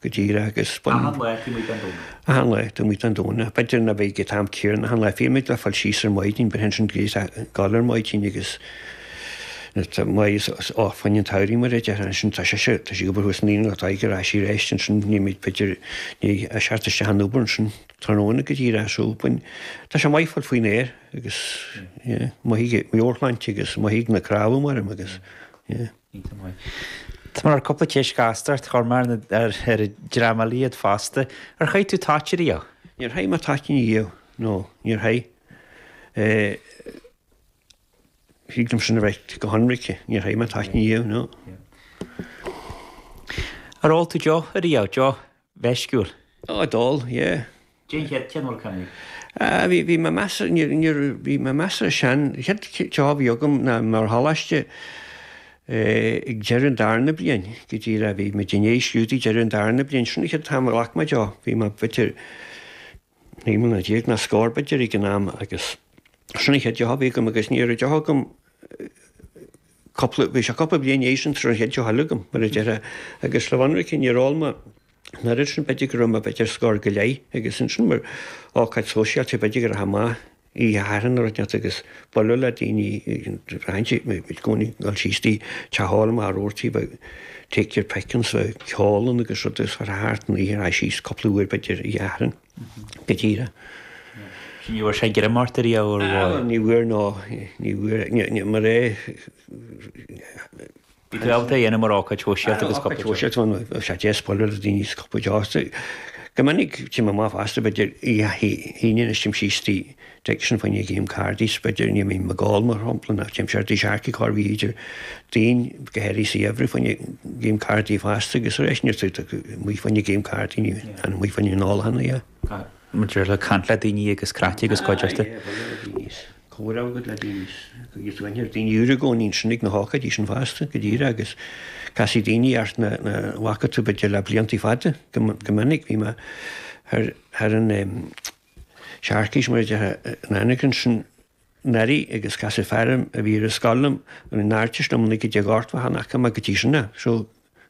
Go díreach agus baineann. Achan lá, théimid ag snámh. Achan lá, théimid ag snámh. Ach b'fhéidir nach bheidh an t-am céanna. Achan lá, théimid síos ar maidin, b'shin sin gríos galar maidin agus tá maith is oth faoin an tsamhraidh mar a déarfá. Ansin tá sise, tá sí obair thuas an Aoine lá, tá ag ar ais aríst ansin, nímid b'fhéidir, ní a seacht isteach an obair ansin tráthnóna go díreach so bhain, tá sé maith fáil faoin aer agus yeah maith ag meabhairshláinte agus maith ag na cnámha mairim agus yeah. Tá mar cúpla ceist gasta ort, a Chormaic, ar ar an dream eile fosta. Ar chaith tú toit ariamh? Níor chaith mé toitín ariamh, nó níor chaith. Thig liom sin a ráit go hionraice, níor chaith mé toitín ariamh, nó. Ar ól tú deoch ariamh? Deoch mheisciúil. Oh, d'ól, yeah. An chéad deoch a cheannaigh? Ah, bhí, bhí mé measartha, níor, níor, bhí mé measartha sean. Chéad deoch a bhí agam ná ar choláiste eh, ag deireadh an darna bliain, go díreach bhí muid i ndiaidh scrúduithe deireadh an darna bliain, sin an chéad am a ghlac mé deoch, bhí mé, b'fhéidir, Naoi mbliana déag nó scór b'fhéidir ag an am agus sin an chéad deoch a bhí agam agus ní raibh deoch agam cúpla, bhí sé cúpla bliain arís sula raibh an chéad deoch eile agam mar a déarfá agus le bheith ionraic níor ól mé an oiread sin b'fhéidir go raibh mé b'fhéidir scór go leith agus ansin mar ócáid shóisialta b'fhéidir go raibh sé maith oíche Shathairn dul amach agus bualadh le daoine i gcónaí ag dul síos tí, teach óil mar a dúirt tú, take your pick ansin ceol ann agus rud is rud thart an oíche a rá síos cúpla uair b'fhéidir oíche Shathairn go díreach. Sin ní bhfuair sé greim ort riamh mar a déarfá? Ní bhfuair nó ní bhfuair. Ní mar é. Bhí gaolta a dhéanamh mar ócáid shóisialta agus cupla deoise. An ócáid shóisialta atá ann, is ea bualadh le daoine agus cupla deoise. Go minic, téim amach fosta, b'fhéidir, oíche hAoine anois téim síos trí Deic sin fá choinne game cárdaí, b'fhéidir, níl mé ag ól, mar shampla, ná téim siar tigh Sharkey corroíche Déardaoin go háirithe sa gheimhreadh fá choinne game cárdaí fosta agus arís, níl saothar acu amuigh fá choinne game cárdaí, ní hannamh amuigh fá choinne an óil cheana, yeah. maidir le caint le daoine agus craic agus cuideachta. Aye, bualadh le daoine is comhrá agat le daoine is agus bíonn daoine úra i gcónaí ansin ag na hócáidí sin fosta, go díreach agus casfaidh daoine thart nach bhfaca tú b'fhéidir le blianta fada go go minic bhí mé thar thar an em Sharkies mar a déarfá in Anagaire ansin anuraidh agus casadh fear orm a bhí ar an scoil liom a bhí in Ardteist naoi déag ochtó a hocht nach bhfaca mé go dtí sin a so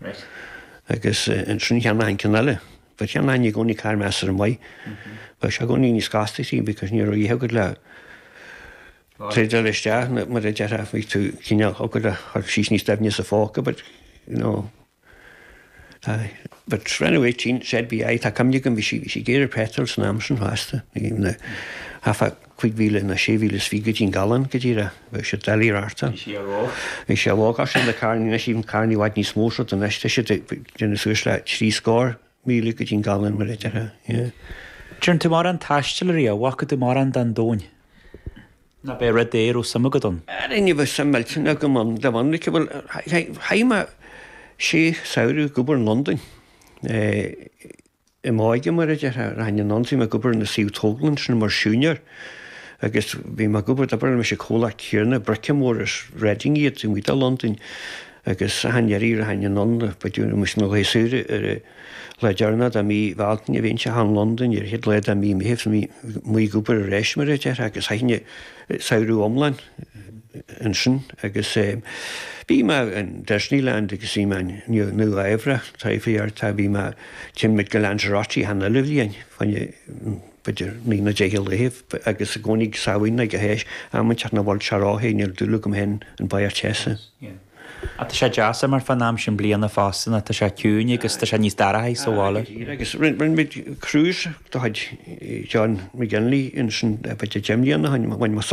Raight. Agus ansin cheannófá an ceann eile. But cheannófá i gcónaí carr measartha maith. Bheadh sé i gcónaí níos costasaí because ní raibh a dhath agat le trádáil isteach nó mar a déarfá bhí tú cineál ag gabháil síos níos doimhne sa phóca but you know aye. But when I was eighteen said be aye tá cuimhne agam bhí sí bhí sí ag iarraidh petrol san am sin fosta. Bhí na half a cúig mhíle nó sé mhíle is fiche go dtí an galún go díreach, bhí sé Daly Rarta, bhí sé ar lár, bhí sé ar lár gach seachtain le carrannaí anois tá carrannaí i bhfad níos mó sult anois tá siad ag déanamh suas le trí scór míle go dtí an galún mar a déarfá yeah. An dtearn tú mórán taistil ariamh, an bhfaca tú mórán don domhain nó ab é rud é a raibh suim agat ann? Ara ní bheadh suim millteanach agam ann de bhun like bhuel chaith mé sé samhradh ag obair in Londain eh, i m'óige mar a déarfá, rachainn anonn, bhí mé ag obair ar na suímh tógála ansin mar siúinéir agus bhí mé ag obair, d'oibir mise i comhlacht céanna, Brickymoor as Reading iad, taobh amuigh de Londain agus achan iarraidh rachainn anonn, ba diabhal mise na laethe saoire ar an lá deireanach de mhí na Bealtaine bhínnse thall in Londain, ar an chéad lá de mhí Meithimh bhí mé ag obair arís mar a déarfá agus chaithinn samhradh iomlán ansin agus bhí mé in Disneyland agus bhí mé in Nua Eabhrac, trí cuarta, bhí mé, théid muid go Lanzarote achan uile bhliain, b'fhéidir naoi nó deich lá agus i gcónaí Samhain ag an am inteacht nach bhfuil sé róthe, níl dúil agam féin in barraíocht teasa. Ach tá sé deas imeacht fán am sin bliana fosta nó tá sé ciúin agus tá sé níos dorcha sa bhaile. Aye, go díreach agus rinne rinne muid cruise de chuid John McGinley ansin b'fhéidir deich mbliana ó shin, bhain muid sult as.